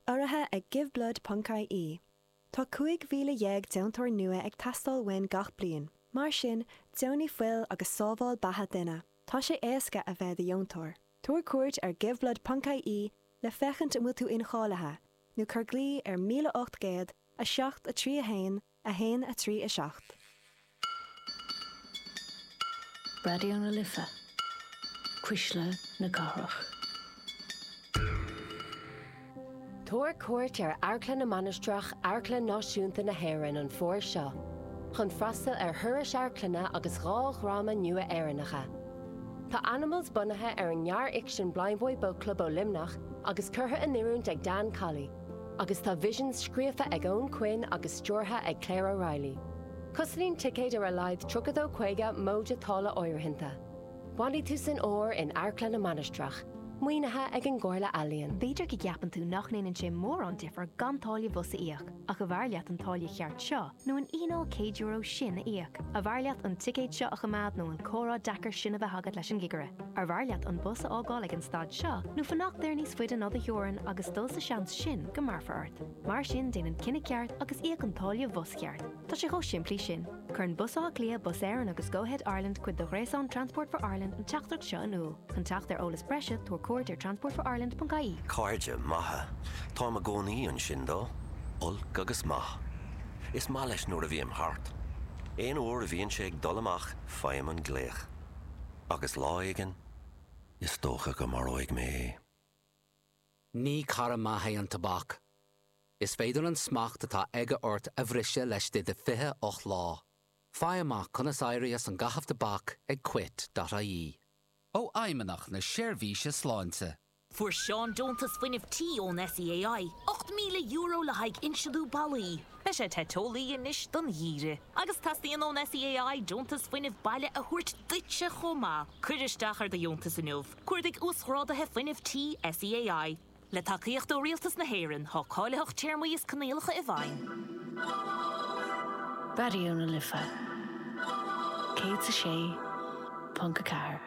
Urraithe ag Giveblood Ponc IE. Tá 15,000 deontóir nua ag teastáil uainn gach bliain. Mar sin, deonaigh fuil agus sábháil beatha duine. Tá sé éasca a bheith do dheontóir. Tabhair cuairt ar Giveblood Ponc IE le féachaint an bhfuil tú incháilithe, nó cuir glaoch ar 1800 7 3 1 1, 3, 7. Raidió na Life, Cuisle na Cathrach. Tabhair cuairt ar Amharclann na Mainistreach Amharclann Náisiúnta na hÉireann an fómhar seo chun freastal ar thurais amharclainne agus dhá dhráma nua Éireannacha. Tá Animals bunaithe ar an ngearrfhicsean Blindboy Boatclub ó Luimneach agus curtha in oiriúint ag Dan Colley. Agus tá Visions scríofa ag Eoin Quinn agus stiúrtha ag Claire O'Reilly. Cosnaíonn ticéid ar a laghad trí euro déag caoga móide táille áirithinte. Bainfidh tú an-sórt in Amharclann na Mainistreach, maoinithe ag an gComhairle Ealaíon. B'fhéidir go gceapann tú nach ndéanann sé mórán difir gan táille bhus a íoc, ach arbh fhearr leat an táille cheart seo, nó an fhíneáil céad euro sin a íoc arbh fhearr leat an ticéad seo a choimeád nó an comhrá deacair sin a bheith agat leis an gcigire arbh fhearr leat an bus a fhágáil ag an stad seo nó fanacht air níos faide ná do theorainn agus dul sa seans sin go mbearfar ort. Mar sin déan an cinneadh ceart agus íoc an táille bhus cheart. Tá sé chomh simplí sin. Cuireann Bus Átha Cliath, Bus Éireann agus Go-Ahead Ireland cuid de ghréasán Transport for Ireland an teachtaireacht seo in iúl. Chun teacht ar eolas breise, tabhair cuairt ar transportforireland.ie. Cairde maithe. Táim i gcónaí ansin dó. Olc agus maith. Is maith leis nuair a bhím thart. Aon uair a bhíonn sé ag dul amach faighim an glaoch. Agus lá éigin, is dócha go maróidh mé é. Ní cara maith é an tobac. Is féidir an smacht atá aige ort a bhriseadh laistigh de 28 lá. Faigh amach conas éirí as an gcaitheamh tobac ag Quit dot ie. ó Fheidhmeannach na Seirbhíse Sláinte. Fuair Seán deontas fuinnimh tí ón SEAI, €8,000 le haghaidh insealú ballaí. Beidh sé te teolaí anois don gheimhreadh. Agus teastaíonn ón SEAI deontas fuinnimh baile a thabhairt duitse chomh maith. Cuir isteach ar do dheontas inniu. Cuardaigh Uasghráduithe Fuinnimh Tí SEAI. Le tacaíocht ó Rialtas na hÉireann, tá cáilitheacht téarmaí is coinníollacha i bhfeidhm. Raidió na Life 106.4.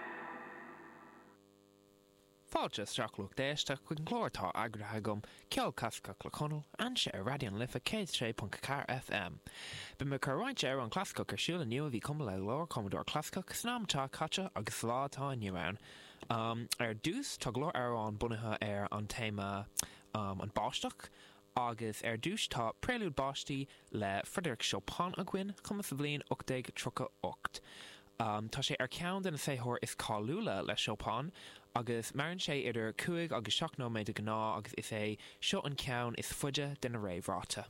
Fáilte isteach lucht éisteachta chuig an gclár atá eagraithe agam, Ceol Clasaiceach le Conal, anseo ar Raidió na Life 106.4 FM. Beidh mé ag cur roinnt amhrán clasaiceach ar siúl inniu a bhí cumtha le go leor cumadóir clasaiceach san am atá caite agus sa lá atá inniu ann. Ar dtús, tá go leor amhráin bunaithe ar an téama An Báisteach agus ar dtús tá Prelude Báistí le Frederic Chopin againn, cumtha sa bhliain 1838. Tá sé ar cheann de na saothair is cáiliúla le Chopin agus maireann sé idir cúig agus seacht nóiméad de ghnáth agus is é seo an ceann is faide de na réamhráite.